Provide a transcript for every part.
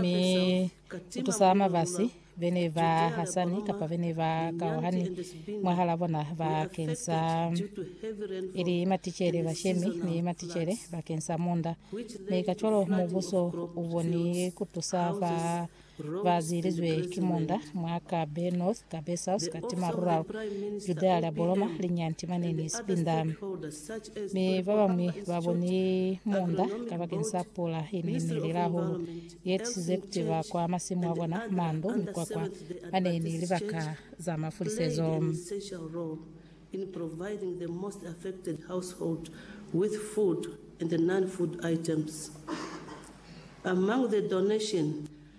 Mi ku tusa mabasi bene ba hasani kapa bene ba kauhani mwahala bona bakeng sa ili maticele bashemi ni maticele bakeng sa munda. Mi kacwalo mubuso uboni kutusa ba ba zilizwe ki munda mwa Kabe North Cabezas, Katima Rural, Judea lia Boloma, Linyanti Manini, Sipinda. Mi babañwi baboni muunda kabakeni sa pula yene yeniile hahulu yeetusize kuti bakwa masimu abona, mandu, mikwakwa, mane ni libaka za mafulisezo. in providing the most affected household with food and non-food items. Among the donation,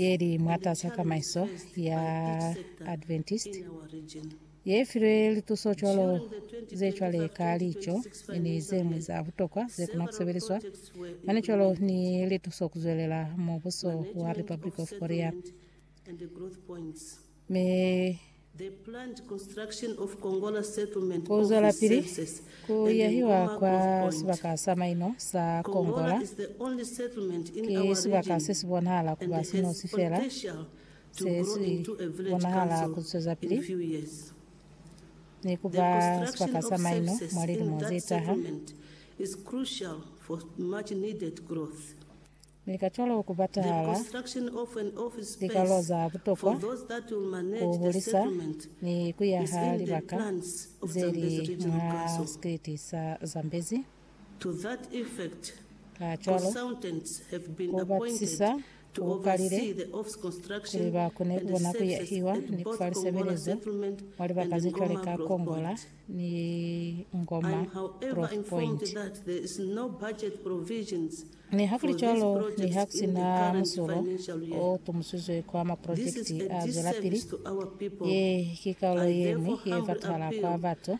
ye li mwatas'a tamaiso ya Adventist ye filwe lituso cwalo ze cwale ka lico ni ze ñwi za butokwa ze kona ku sebeliswa, mane cwalo ni lituso ku zwelela Mubuso wa Republic of Korea. Mi ku zwelapili ku yahiwa kwa sibaka sa maino sa Kongola, ki sibaka se si bonahala ku ba sinosi fela se si bonahala ku zwezapili ni ku ba sibaka sa maino mwa lilimo ze taha. Mi ka cwalo ku batahala likalo za butokwa ku hulisa ni ku yaha libaka ze li mwa sikiliti sa Zambezi. Kacwalo, ku batisisa ku kalile kuli ba kone ku bona ku yahiwa ni ku fa lisebelezo mwa libaka ze cwale ka Kongola ni Ngoma Growth Point. Nihakulicwalo, niha ku si na musulo o tumusizwe kwa maprojekiti a zwelapili, ye ki kaulo ye ñwi ye fatahala kwa batu.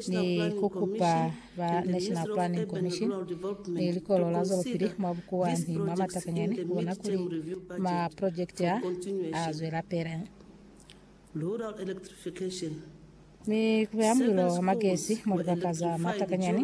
Ni ku kupa ba National Planning Commission ni Likolo la Zwelopili mwa Bukuwa ni mwa Matakanyani ku bona kuli maprojekiti a a zwelapili. Mi ku beha mulilo wa magesi mwa libaka za Matakanyani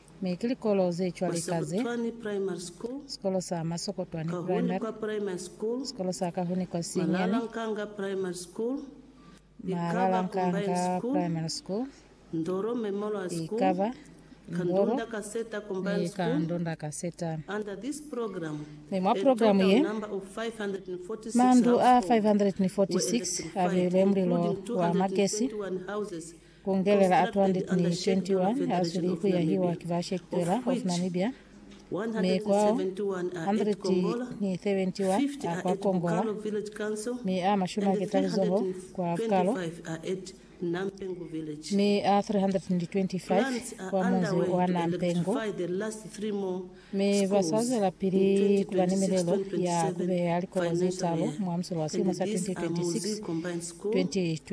Mi ki likolo ze cwalika ze, sikolo sa Masokotwani Primary, sikolo sa Kahunikwa Sinyani, Malalankanga Primary School, ikaba Ndoro ni ka Ndonda Kaseta. Mi mwa programu ye, mandu a 546 a beilwe mulilo wa magesi Kongelela a 221 a zwile ku yahiwa ki ba Shekpela of Namibia, mi kwao 171 a kwa Kongola, mi a mashumi a keta lizoho kwa Karo, mi a 325 kwa munzi wa Nampengu. Mi ba sa zwela pili ku ba ni milelo ya ku beya likolo ze talo mwa musolo wa silimo sa 2026, 2027.